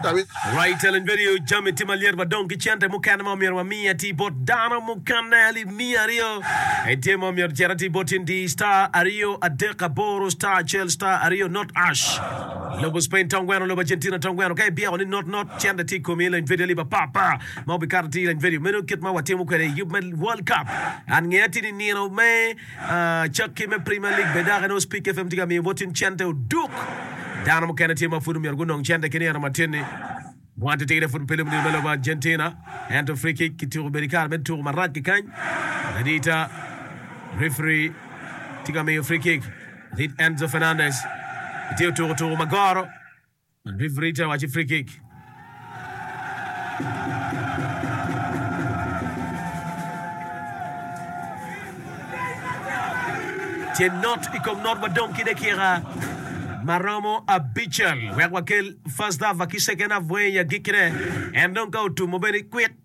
Rai teleng bedo jami tye malyet wa dong ki cente mukene ma omyero wa miye atir bot dano mukene alip miya aryo en tye ma omyero cere atir bot in diyi star aryo adek aboro star acel star aryo not ash lobo spain tong gweno lobo argentina tong gweno ka ibyeko ni not not cente tye ikomi ileny video alip apar par ma obikato atir ileny video meno kit ma watimo kwede yub me world cup an ngeya tye ni nino me Cakke me Premier League bene dok inongo Spik FM tye ka miyo bottin cente oduk. Dano mukene tye ma pud omyero gunong cente ki nino matin-ni. Bwante tye gire pud pe lubnio me lobo Argentina, ento free kick kituko bene kare me tuko marac kikany. Adita, referi tye ka miyo free kick. Lit Enzo Fernandez tye otuko tuko ma goro. Rifiri tye ka waco free kick. Tye not i kom not wadong ki dakika ma romo abicel wek wakel first half ki second half weng i agikkine. En dong ka otumo bene kwik.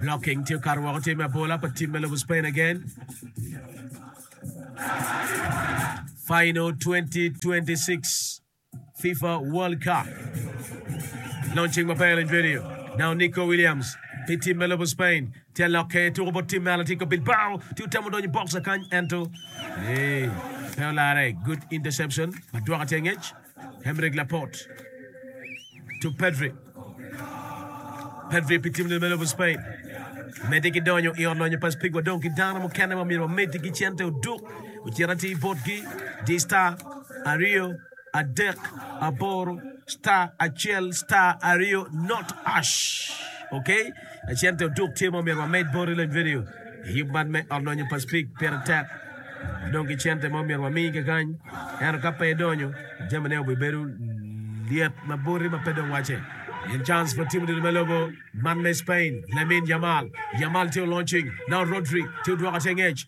Blocking tye okato woko tye me abola pa tim me lobo Spain again. Final 2026 FIFA World Cup. Launching maber in video. Now Nico Williams pi tim me lobo Spain tye alokke tuko bot tim me Atletico Bilbao tye otemo donyo box akany ento ee pe olare. Good interception ma dwoka tye ngec. Emerick Laporte to Pedri. Pedri pi tim lebe lobo Spain. Medi ki donyo i ot lonyo pa Spig wa dong ki dano mukene ma myero wamedi ki cente oduk ocit ati botgi di star aryo adek aboro star acel star aryo not ash okay Lacen te otuk tye ma omyero wamed boti lony vidio i yub man me ot lonyo pa Speke. Pire tek dong ki cente ma omyero wami kekany, ento ka pe idonyo, jamine obibedo lyet ma boti ma pe dong wacce. Pien cans pa tim odilo me lobo man me Spain, Lamine Yamal, Yamal tye olony cwiny, Nao Rodri tye odwoko ace ngec.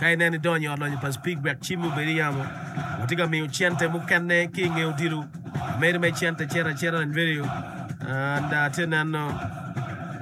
Ka ineno idonyo i ot lonyo pa Speke wek cimmi obed i yamo, watye ka miyo cente mukene ki i nge odilo. Meri me cente cito acita i radio and atye neno